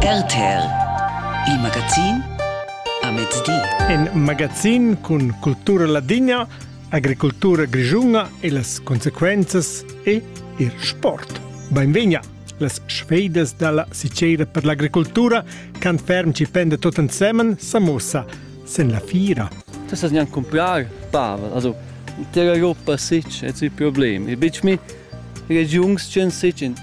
RTL, il magazin a mezdi. In magazin cun cultura ladina, agricultura grischuna e las consequenzas e il sport. Benvegna! Las sfeidas dalla Sicera per l'agricoltura can ferm ci pende tot ensemen samosa sen la fira. Tu sas neanche comprar pava, also terra Europa sic et si problem. E bitch mi regiungs chen sic in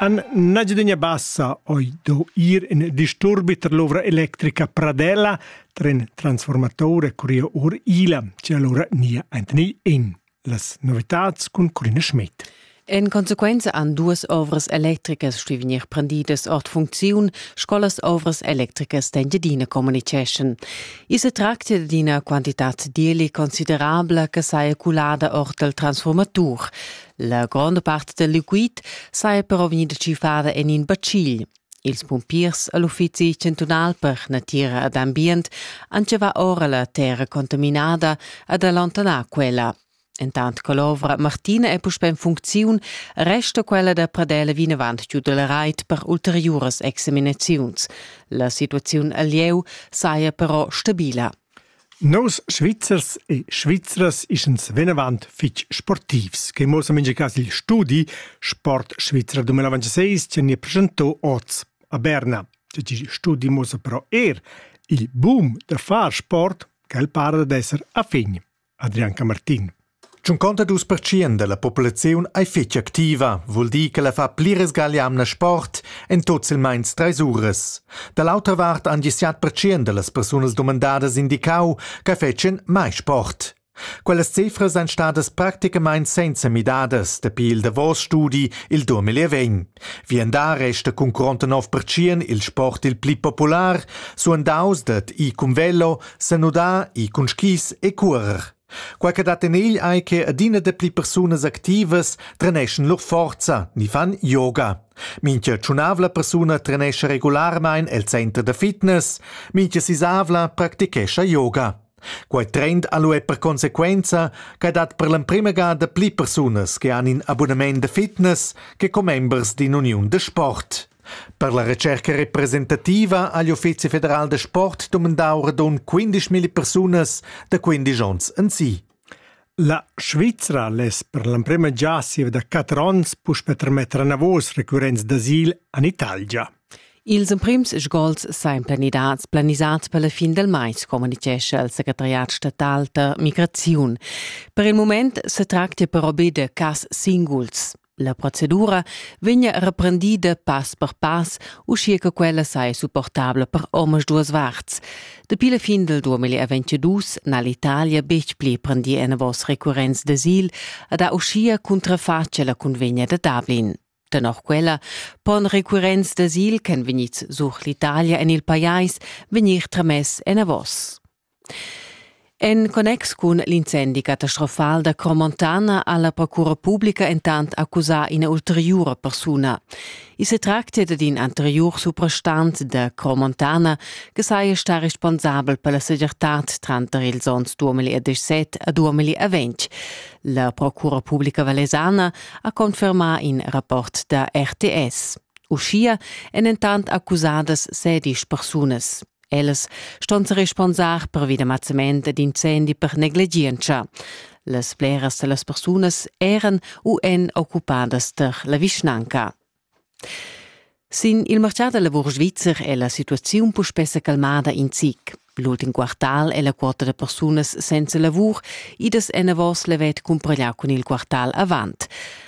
An Nagiadegna Bassa oi do ir in disturbi ter l'ovra electrica Pradella tra in transformatore curia or Ila, ce allora nia Anthony In. Las novitats cun Corina Schmidt. En conseguenza an duas ovras electricas sti vegnir prendidas ord funcziun, sco las ovras electricas d'Engiadina communiceschan. I se tractia d'ina quantitad deli considerabla che saja culada ord il transformatur. La gronda part del liquid saja però vegnida tschiffada en in bacil. Ils pumpiers all'uffizi chantunal per natira ed ambient han va ora la terra contaminada ad allontanar quella. Entant che l'ovra Martina è puspè en funcziun, resta quella da Pradela vinavant giu dal rait per ulteriuras examinaziuns. La situaziun al lieu saja però stabila. Nos Svizzers e Svizras ischens venavant fitg sportivs, che muossa mincha cas il studi Sport Svizra 2026 che ni presentò oz a Berna. Il studi muossa però er il boom da far sport, che el para d'esser a fin. Adrian Camartin. Tschunconta dus pertschient dalla populaziun ei fetg activa, vul dir che la fa pli resgaglia amna sport en tot silmeins treis uras. Dall'autra vart han gli siat pertschient dallas persunas dumandadas indicau che fetschen mai sport. Quellas cifras ein stadas practicamein senza midadas dapi il davos studi il 2020. Vien da resta cun 49% il sport il pli popular, suandaus dad i cum velo, senudar e cun skis e curer. Quai che dat en egl ei che adina dapli persunas activas treneschan lur forza ni fan yoga. Mintga tschunavla persuna trenescha regularmein el center da fitness, mintga sisavla practichescha yoga. Quei trend ha lu per consequenza che dat per l'emprema gada pli persunas che han in abonament da fitness che commembers d'in uniun da sport. Per la retscherca representativa ha l'Uffizi federal da sport dumandau radund 15 milli persunas da 15 onns ensi. La Svizra less per l'emprema gia siva da 4 onns puspe trametter anavos recurrents d'asil en Italia. Ils emprims sgols sempre nidats planisats per la fin del mais, communichescha il secretariat statal da migraziun. Per il moment se tracta però be de cas singuls. La procedura vegna reprendida pass per pass, uschia che quella sai supportabla per omas duas varts. Dapi la fin del 2022 n'ha l'Italia betg pli prendì enavos recurrents d'asil ed ha uschia cuntrafatg la convegna da Dublin. Tenor quella pon recurrents d'asil ch'en vegnids sur l'Italia en il pajais vegnir tramess enavos. En connex cun l'incendi catastrofal da Cromontana ha la Procura publica entant accusà ina ulteriura persuna. I se tractia dad in anteriur suprastant da Cromontana che saja stà responsabel per la segirtad tranter ils onns 2017 a 2020. La Procura publica valesana ha confermà in rapport da RTS. Uschia èn entant accusadas sedisch persunas. Ellas ston se responsar pervi da mazzament ed incendi per negligientscha. Las bleras da las persunas eran u èn occupadas tar la vischnanca. Sin il martgà da lavur svizzer è la situaziun puspè sa calmada in zic. L'ultim quartal è la quota da persunas senza lavur idas enavos levet cumpareglià cun il quartal avant.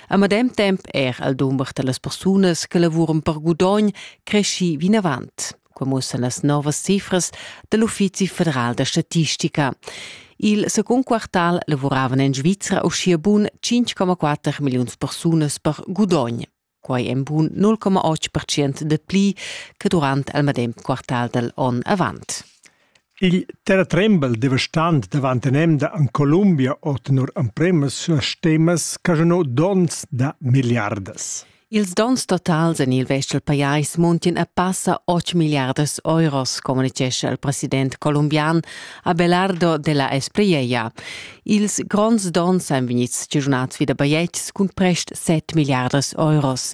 A medem temp er al dumber da las persunas che lavuran per gudogn cresci vinavant. Quai muossan las novas cifras dal Uffizi federal da statistica. Il secund quartal lavuravan en Svizra uschia bun 5,4 milliuns persunas per gudogn. Quai en bun 0,8% de pli che durant il medem quartal dal onn avant. Igl terratrembel devastant davant in'emda en Columbia ò tenor empremas suastemas caschunà donns da milliardas. Ils donns totals en il vest dal pajais muntin a passa 8 milliardas euros, communitgescha il president colombian Abelardo de la Espriella. Ils gronds donns èn vegnids giunads vi da bajetgs cun prest 7 milliardas euros.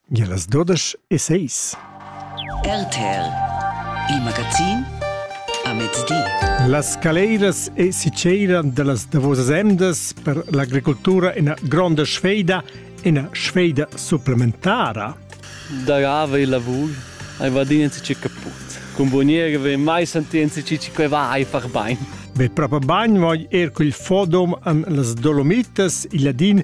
Gia las dudesch e seis. RTL, il magazin a mezdi. Las caleiras e siceiran dallas davosas emdas per l'agricoltura ina gronda sfeida, ina sfeida supplementara. Da gava il lavur, hai vadinzi ci caput. Con boniere ve mai sentienzi ci ci va hai far bain. Ve proprio bagn voi er col fodom an las Dolomitas, il ladin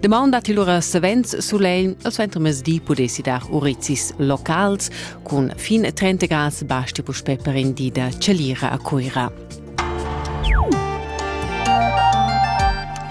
Demand dat il ura savens sulegl e suenter mesdi pudessi dar urizis locals cun fin 30 grads basti puspè per in di da celira a Cuira.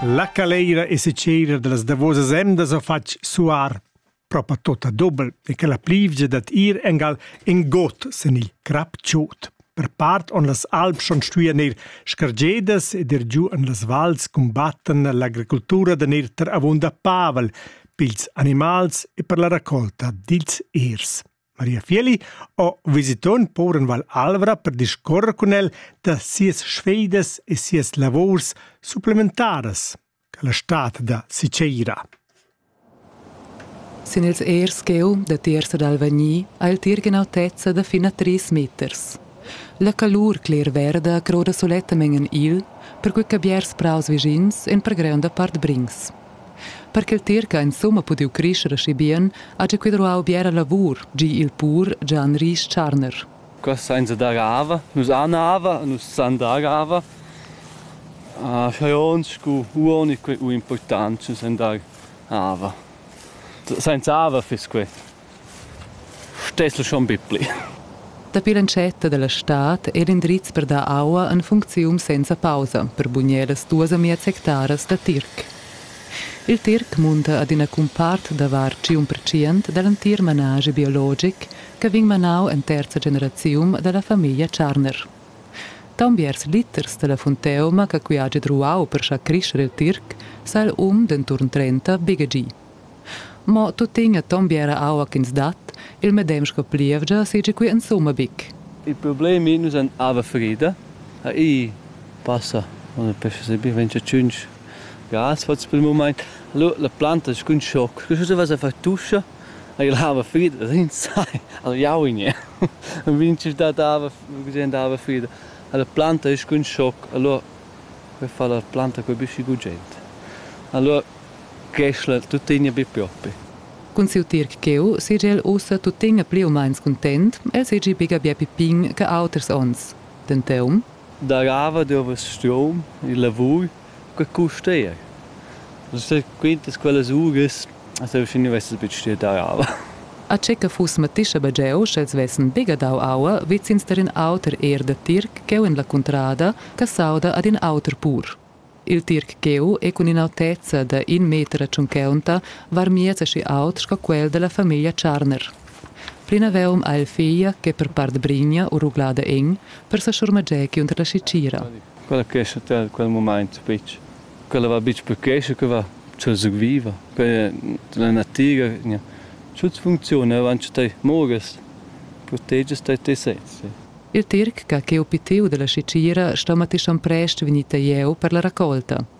La caleira e secera de las davosas emdas ha fatg suar. propa tota dobel e che la plivgia dad ir engal in got sen il crap chot. Per part on las alp schon stuian ir scargedas ed ir giu en las vals combatten l'agricultura da ir ter avunda pavel, pils animals e per la raccolta dils irs. Maria Fieli o visiton poren Val Alvra per discorrer con el da sias sfeidas e sias lavors supplementaras. quella stad da Sicera. Sin ils ers cheu da tiarza d'Alvagni ha il tir gnanotezza da fin a tris meters. La calur cler-verda croda sulettamen igl, perquei che biars praus vischins en per greunda part brings. Per che il tir che ha insomma pudiu crescere aschi bien, ha già quid ruau biera lavur, gi il pur Gian Ries Tscharner. Qua sainza dar ava. Nus han ava, nus san dar ava. Uh, scha ons scu uoni que u important nus san dar ava. Sainza ava fiss que. Stessel schon bipli. Dapi l'entschetta dalla stad è l'indriz per dar aua en funcziun senza pausa per bugner las duas amias hectaras da tirc. Il tirc munta ad ina cumpart da var 1% da l'entir manaschi biologic che vegn manau en terza generazium dalla famiglia Tscharner. Taunt biars liters dalla funteuma che qui hagi druau per schar crescher il tirc, sa il um denturn trenta begegi. Mo tuttegna ton biera aua ch'ins dat, il medem sco plievgia seigi qui insumma bic. Il problem ei, nus han ava frida, ha ei passa una pesca sebi 25 gas fats per il moment. Allora la planta scun schoc, che cosa vas a far tuscia? El hava frida, insai, al jaunia. El vegniva da dava, gugent dava frida. La planta es cun schoc, allura per far la planta cun büschi gugent. Allura creschla tuttegna be propi. Cun siu tirc cheu segel ussa tuttegna pli u meins cuntent, el segi biga bia pipin che auters onns. Denteum. Darava dovess strom, il lavur, Que custair. Quintas quellas uras as eu schi nu vess be stuieu dar aua. A che que fuss mattischa be gio, sch'els vessen bger dau aua vezins tar ün auter eir da tirc ch'eu in la cuntrada, che sauda ad ün auter pur. Il tirc ch'eu he cun ün'autezza da ün meter e tschuncaunta var miez aschi aut sco quel da la famiglia Tscharner. Plinavaunt ha el figlia che per part brigna u ruglada in, per sa schurmager giunter la schicira. Quella crescha te in quel mumaint fich. Quella va bitg per crescher, que va cha sü viva. Que la natiga gnà tuot funcziuna auncha tai mouras, protegiast tai te sezs. Il tirc ch'ha cheu pitiu dalla schichira sto mattischan prest vegnir tagliau per la raccolta.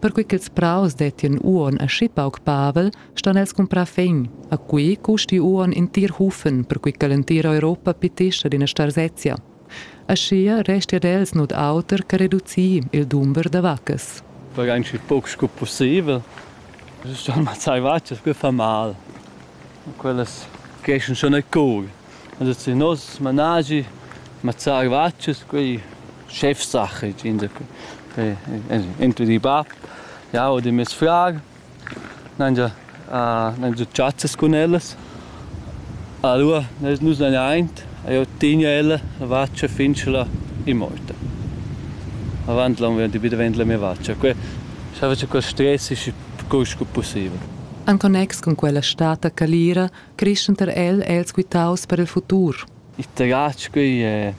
Perquei ch'ils praus dettien uonn aschi pauc pavel, ston els cumprar fegn. A quei custi uonn in tir hufen, perquei che l'entira Europa pitescha d'ina starsezia. Aschia resti ad els nuot auter che reducir il dumber da vaccas. Fai eigentlich pauc sco possibel. Es schon mal zwei Vaccas che fa mal. Quellas creschen schon a coga. Adesso in nos managi mazzà gvatschas, quei Chefsache insacura. Entri di bab, jau ed mes frar n'han già n'han già chazzas cun ellas. Alura nus n'han aint e jau tegn ella la vatscha fin che la è morta. Avant l'on vegn be davent la mia vatscha. Que schava che quel stress schi cur sco pussibel. En connex cun quella stata calira creschenter el els quitaus per il futur. Il terratsch qui è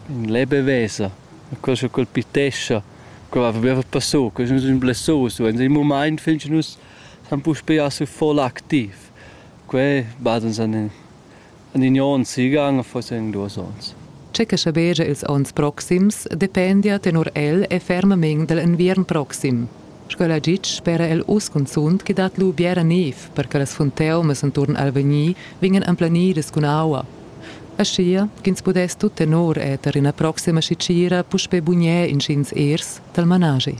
in lebe vesa, quel che colpitescha, quel va per passo, quel è un blessoso, in dem Moment finden uns san puspei a voll aktiv. Que bad uns an an in on sigan forse in duos ons. Che che schabegia ils ons proxims dependia tenor el e fermament dell enviern proxim. Sco l'ha ditg spera el uss cunzunt ch'i dat lu biera niev per che las funteumas enturn Alvegni vegnan emplenidas cun aua. Aschia ch'ins pudess tut tenor eter ina proxima sitgira puspei bugner intgins ers dal manaschi.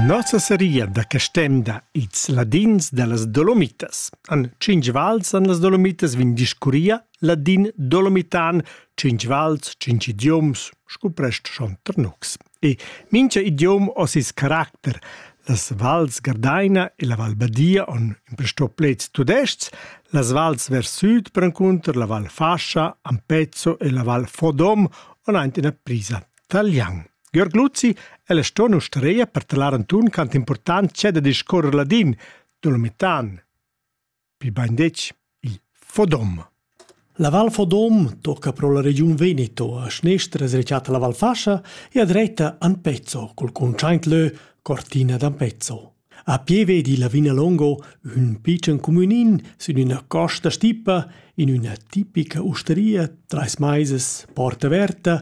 Nossa seria da Castenda ils ladins dallas Dolomitas. An cinc vals an las Dolomitas vin discurria Ladin dolomitan, cinc vals, cinc idioms, scuprest schon Ternux. E mincha idiom ho sis caracter. Las vals Gardaina e la Val Badia on imprestò pleds tudescs, las vals vers sud prencunter la Val Fascia, Ampezzo e la Val Fodom on aint ina prisa talian. Georg Luzzi è la stona ustereia per talar Antun quant important c'è da discorrer ladin, dolomitan, Bi bandetg il Fodom. La Val Fodom tocca pro la regiun Veneto, a schnestra es rechata la Val Fascia e a dretta Ampezzo, col contschaint lö Cortina d'Ampezzo. A pieve di Lavina Longo, ün picen cumünin sün üna costa stipa, in üna tipica usteria, trais maises, porta averta,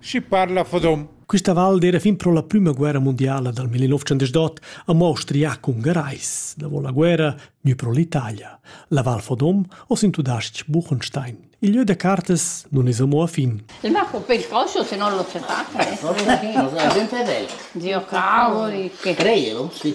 Schi parla fodom. Quista val d'eira fin pro la prüma guerra mundiala dal 1908 a Mostria cun Gerais. Davo la guerra gnü pro l'Italia. La Val Fodom o sin tudais-ch Buchenstein. Il lieu da cartas nun es amo a fin. Il marco per il calcio se non lo sapate. No, no, no, è ben per velo. Zio cavoli. Creio, sì.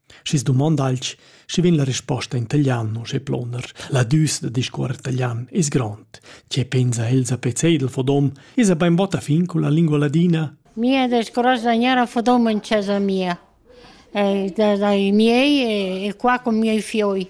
Schi's dumonda alch, schi vegn la risposta in taglian, uschè ploner. La düs da discuorrer taglian es grond. Che pensa Elsa Pezeidl Fodom? Esa bainbod a fin cun la lingua ladina? Mi è discorrere da Fodom in casa mia. da, dai miei e, e qua con miei fioi.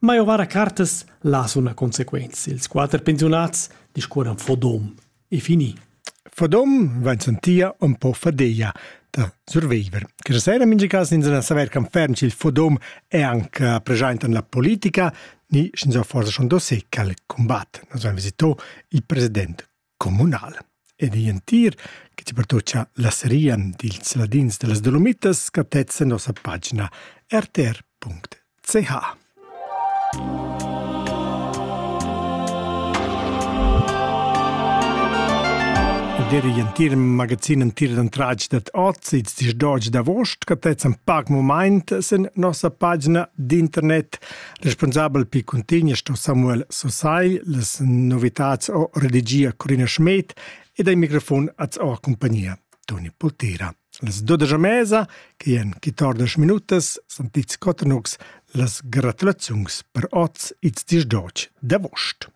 Ma eu vara cartas las una consequenza. Ils quater pensiunats discuoran fodom e fini. Fodom vain sentia un po fadeia da surviver. Questa sera in mingi cas ins na saver can ferm il fodom è anche presente nella politica, ni sch'ins ha forse schon dossier cal combat. Nos ha visitò il presidente communal ed igl entir che ti pertucca la seria dils ladins dallas Dolomitas captezza nossa pagina rtr.ch. Der igl entir magazin entir d'antratg dat ozids dis d'oggi d'avost captezzan pac moment sen nossa pagina d'internet Responsabel pi cuntegna sto Samuel Sosai, las novitats o redigia Corina Schmidt ed ai microfon az o compagnia Toni Poltera. Las dodaja mesa, che en quitordas minutas, san Piz Cottenux las gratulaziuns per oz its dis d'oc d'avost.